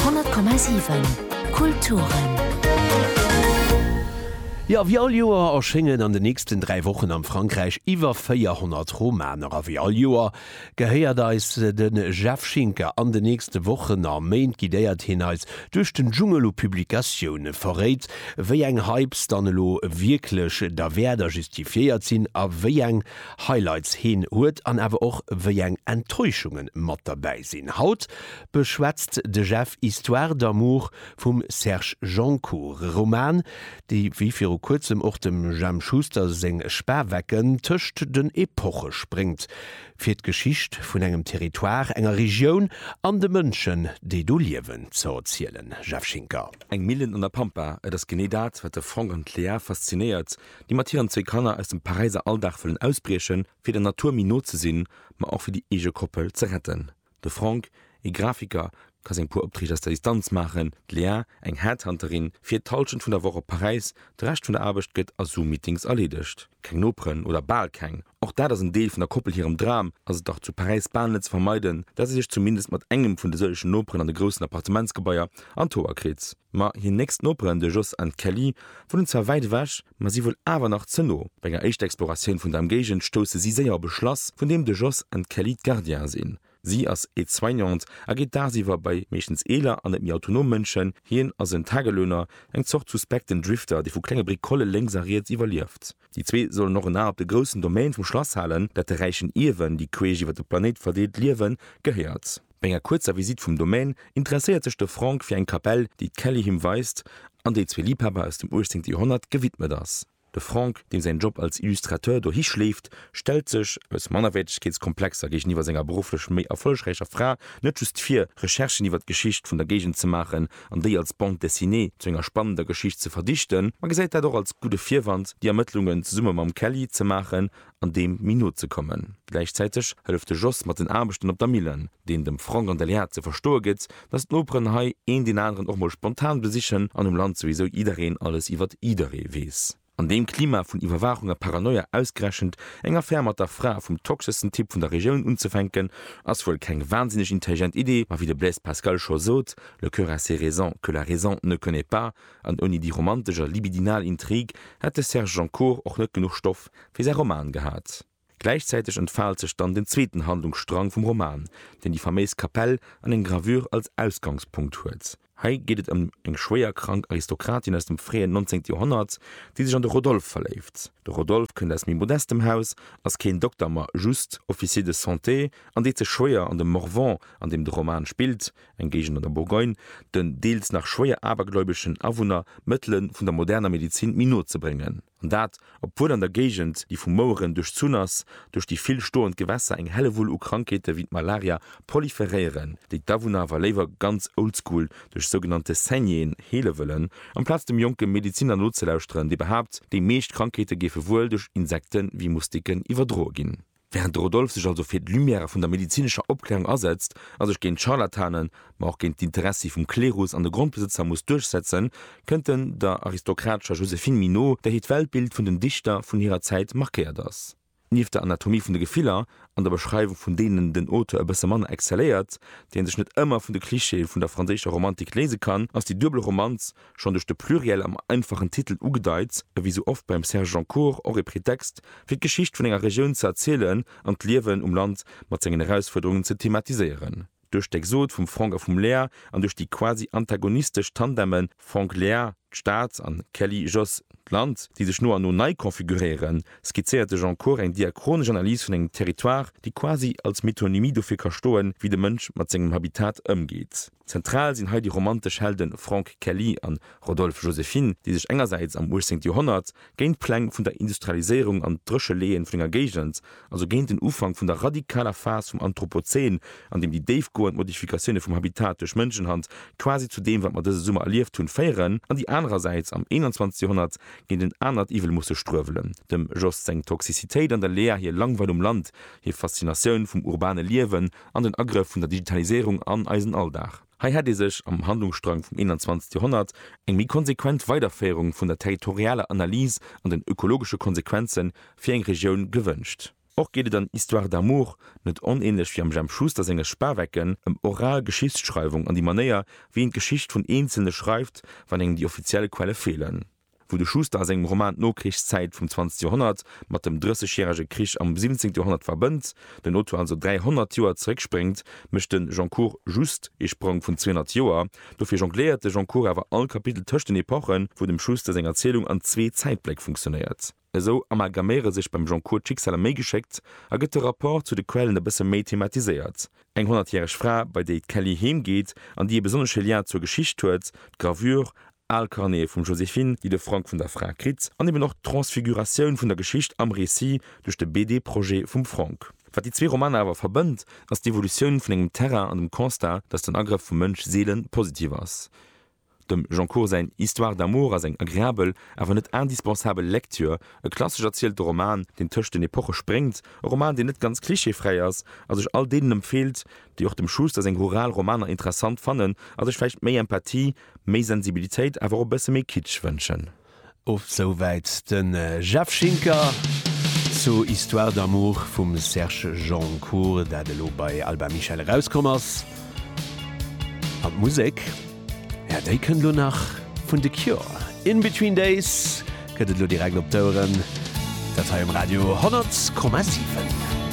100,7 Kulturen. Jo, wéi all Joer erschéngen an den nächsten 3 Wochen am Frankräich iwwer 400 Romaner. A wéi all Joer gehéiert eis de Jeff Schinker. An den nächste Wochen a Méint guidéiert hien eis duerch den Dschungel u Publikatioune, verréit wéi eng Hypes dann elo wierklech derwäert a justifiéiert sinn a wéi eng Highlights heen huet an awer och wéi eng Enttäuschungen mat derbäi sinn. Haut beschwätzt de Jeff Histoire d'amour vum Serge Joncour, e Roman déi wéi viru kuerzem och dem Jemp Schuster seng Spawecken tëscht den Epoche spréngt, fir d'Geschicht vun engem Territoire, enger Regioun an de Mënschen déi do liewen ze erzielen. Jeff Schinker. Eng Millen an der Pampa, et ass genee dat, wat de Franck an d'Léa faszinéiert. déi mat hiren zwee Kanner aus dem Paräiser Alldag wëllen ausbriechen, fir der Natur méi no ze sinn, ma och fir déi eege Koppel ze retten. De Franck, ee Grafiker, ka seng puer Opträg aus der Distanz maachen, d'Léa, eng Headhunterin, fiert d'Hallschent vun der Woch op Paräis, de Rescht vun der Aarbecht gëtt a Zoom-Meetings erleedegt. Keng Noperen, oder bal keng, Och dat ass en Deel vun der Koppel hirem Dram, ass et dach zu Paräis bal net ze vermeiden, dat si sech zumindest mat engem vun de sëllegen Noperen an de groussen Appartementsgebaier an d'Hoer kritt. Ma hir nächst Noperen, de Jos an d'Kelly, wunnen zwar wäit ewech, ma si wuel awer nach ze no. Bei enger éischter Exploratioun vun der Emgéigend stousse si séier op e Schlass, vun deem de Jos an d'Kelly d'Gardiene sinn. Si ass Aide-soignante a geet dagsiwwer bei meeschtens eeler an net méi autonom Mënschen. Hien ass en Tagelöhner, eng Zort suspekten Drifter, dee vu klenge Bricole lénks a riets iwwerlieft. Déi zwee sollen och en A op de groussen Domaine vum Schlass halen, dat de räichen Ierwen, déi queesch iwwer de Planéit verdeelt liewen, gehéiert. Bei enger kuerzer Visitt vum Domaine interesséiert sech de Frank fir eng Kapell, déi d'Kelly him weist an déi zwee Liebhaber aus dem 18. Joerhonnert gewidmet ass. De Franck, deem säin Job als Illustrateur dohi schleeft, stellt sech aus Mannerwäertegkeetskomplexer géigeniwwer senger berufflech méi erfollegräicher Fra net just vir, Recherchen iwwer d'Geschicht vun der Géigend ze maachen an déi als Bande dessinée zu enger spannender Geschicht ze verdichten, ma gesäit dat och als gudde Virwand, déi Ermëttlungen zesumme mam Kelly ze maachen an deem méi no ze kommen. Gläichzäiteg hëlleft de Jos mat den Aarbechten op der Millen, deen dem Frank an der Léa ze verstoe gëtt, dass d'Noperen hei een deen aneren och mol spontan besichen an um Land souwisou jiddereen alles iwwert jidderee weess. An deem Klima vun Iwwerwaachung a Paranoia ausgerechent eng Affär mat der Fra vum toxeschsten Typ vun der Regioun unzefänken, ass wuel keng wahnsinneg intelligent Idee, ma wéi de Blaise Pascal scho sot, Le cœur a ses raisons que la raison ne connaît pas, an ouni déi romantesch a libidinal Intrig hätt de Serge Joncour och net genuch Stoff, fir säi Roman gehat. Gläichzäiteg entfaalt sech dann den zweeten Handlungsstrang vum Roman, deen déi faméis Kapell an eng Gravure als Ausgangspunkt huet. Hei geet et ëm eng schwéier krank Aristokratin aus dem fréien 19. Joerhonnert, déi sech an de Rodolphe verléift. De Rodolphe kënnt aus méi modestem Haus, ass keen Dokter ma just Officier de santé an deet sech schwéier an dem Morvan, an deem de Roman spillt, eng Géigend an der Bourgogne, den deels nach schwéier abergläubeschen Awunner d'Mëttele vun der moderner Medezin méi no ze bréngen. An dat, obwuel an der Géigend, déi vu Moueren duerchzunn ass, duerch déi vill stoend Gewässer eng Hellewull u Krankheete wéi d'Malaria proliferéieren, déi d'Awunner awer léiwer ganz oldschool duerch sougenannte Saignéeën heele wëllen, amplaz dem jonke Medeziner nozelauschteren, dee behaapt, déi meescht Krankheete géife wuel duerch Insekte wéi Moustiquen iwwerdroe ginn. Während de Rodolphe sech also fir d'Lumière vun der medizinescher Opklärung asetzt a sech géint d'Scharlatanen, ma och géint d'Interessi vum Klerus an de Grondbesëtzer muss duerchsetzen, kënnt en der aristokratescher Joséphine Minot, där hiert Weltbild vun den Dichter vun hirer Zäit markéiert ass. Nieft der Anatomie vun de Gefiller an der Beschreiwung vun deenen den Auteur e bësse manner excelléiert, déi en sech net ëmmer vun de Clichéë vun der franséischer Romantik léise kann, ass déi duebel Romanz, schonn duerch de Pluriel am einfachen Titel ugedeit, e wéi sou oft beim Serge Joncour och e Pretext, fir d'Geschicht vun enger Regioun ze erzielen an d'Liewen um Land mat sengen Erausfuerderungen ze thematiséieren. Duerch d'Exode vum Franck a vum Léa an duerch déi quasi antagonistesch Tandeme Franck-Léa, d'Stad, an Kelly-Jos, d'Land, déi sech no an no nei konfiguréieren, skizzéiert de Joncour eng diachronesch Analys vun engem Territoire, déi quasi als Metonymie dofir ka stoen, wéi de Mënsch mat sengem Habitat ëmgeet. Zentral sinn hei déi romantesch Helde Franck Kelly a Rodolphe Joséphine, déi sech engersäits am 18. Joerhonnert géint d'Pläng vun der Industrialiséierung an d'Drécheleeën vun enger Géigend, also géint den Ufank vun der radikaler Phas vum Anthropozän, an deem déi déifgoend Modifikatioune vum Habitat duerch Mënschenhand quasi zu deem, wat mer dëse Summer erlieft hunn, féieren, an déi anerersäits am 21. Joerhonnert géint en anert Iwwel musse struewelen, dem Jost seng Toxicitéit an der Lea hir Langweil um Land, hir Faszinatioun vum urbane Liewen an den Agrëff vun der Digitaliséierung an eisen Alldag. Hei hätt ee sech am Handlungsstrang vum 21. Joerhonnert eng méi konsequent Weiderféierung vun der territorialer Analys an den ökologesche Konsequenze fir eng Regioun gewënscht. Och geet et an Histoire d'amour, net onänlech wéi am Jemp Schuster senge Spawecken, ëm oral Geschichtsschreiwung an déi Manéier, wéi een d'Geschicht vun Eenzelne schreift, wann engem déi offiziell Quelle feelen. Wou de Schuster a sengem Roman d'Nokrichszäit vum 20 Joerhonnert mat dem Drëssegjärege Krich am 17 Joerhonnert verbënnt, den Auteur also 300 Joer zeréckspréngt, mécht de Goncourt just ee Sprong vun 200 Joer. Dofir jongléiert de Goncourt awer all Kapitel tëscht den Epochen, wou dem Schuster seng Erzielung an zwee Zäitbléck funktionéiert. Esou amalgaméiere sech beim Goncourt d'Schicksaler méi geschéckt a gëtt de Rapport zu de Quellen e bësse méi thematiséiert. Eng honnertjäreg Fra, bei déi d'Kelly heem geet an déi e besonnesche Lien zur Geschicht huet, d'Gravure, al Carnete vum Joséphine, déi de Frank vun der Fra kritt, an eben och d'Transfiguratioun vun der Geschicht am Récit duerch de BD-Projet vum Frank. Wat déi zwee Romaner awer verbënnt, ass d'Evolutioun vun engem Terrain an dem Constat, datt den Agrëff vum Mënsch seele positiv ass. Dem Goncourt säin Histoire d'amour ass eng agreabel, awer net indispensabel Lecture. E klassesch erzielten Roman, deen tëscht den Epoche spréngt, e Roman, deen net ganz klischeefräi ass a sech all deenen empfeelt, déi och dem Schuster seng rural Romaner interessant fannen a sech vläicht méi Empathie, méi Sensibilitéit, awer och e bësse méi Kitsch wënschen. Of souwäit de Jeff Schinker zu Histoire d'amour vum Serge Joncour, dat elo bei Albin Michel erauskomm ass. An d'Musek, jo, déi kënnt elo nach vun The Cure. In Between Days gëtt et elo direkt op d'Oueren, dat hei um Radio 100,7.